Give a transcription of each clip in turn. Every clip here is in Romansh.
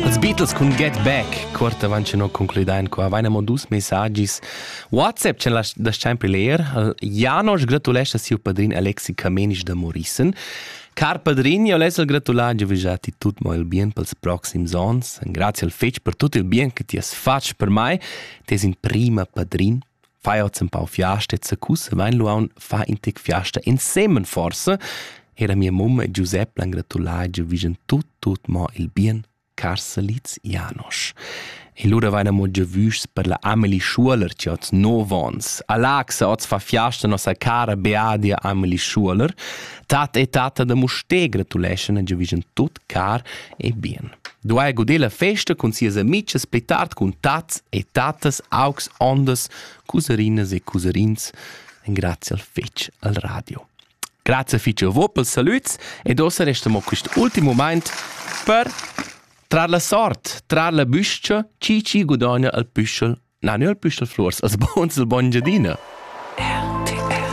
Als Beatles cun Get Back, cuort avant che noi concludein qua, vaina mo dus messagis. WhatsApp c'è da sempre leer. Janosch gratulescha siu padrin Alexi Camenisch da Morissen. Car padrin, io les al gratular giu vijà ti tut mo il bien pels proxims ons. Grazie al fetg per tut il bien che ti has fatg per mai. Tes in prima padrin Feier empau fiasta e zaccusse vain luaun fa in tec fiasta ensemen forse era mia mum e Giuseppe l'han gratulà giu vigen tut tut mo il bien Carselitz Janosch. E lura vaina mo giu vuschs per la Amelie Schuler che oz no vons. Alaxa oz fa fiasta nossa cara Beadia Amelie Schuler. Tat e tata da Musté gratuleschan giu vigen tut car e bien. Duai guder la festa cun sias amichas pli tard cun tats e tattas, augs, ondas, cuserinas e cuserins. Grazie al fetg al radio. Grazie fitg a voi per il saluts ed ossa resta mo questo ultimo moment per trar la sort, trar la büscia, chi chi gudogna al püschel Na, neu püschel flurs as bons il bon Giadina. RTL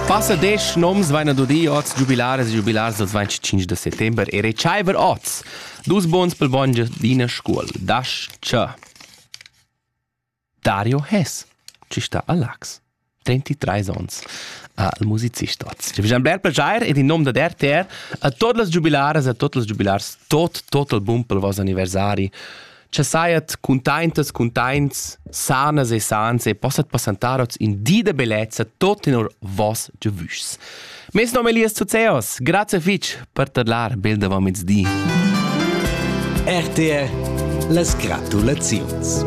Passa desch noms vaina dudi oz jubilares e jubilars dals 25 de settember e retschaiver oz. Dus bons pel bon Giadina Scuol. Das tschö. Dario Hess, chi sta a Lax. 33 ons al musicist oz. Wir haben bler plejair ed in nom da RTR a tot las giubilaras e a tot las giubilars tot total bumpel vos anniversari. Che saiat containtas, containts, sanas e sans e possat passantar oz in di da bellezza tot in or vos giavüschs. Mes nome è Elias Zuzeos. Grazie fitch per tadlar bel davom di. RTR Les gratulaziuns.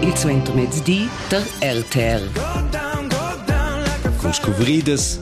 Il suentermezdi der RTR. Con scuvriedes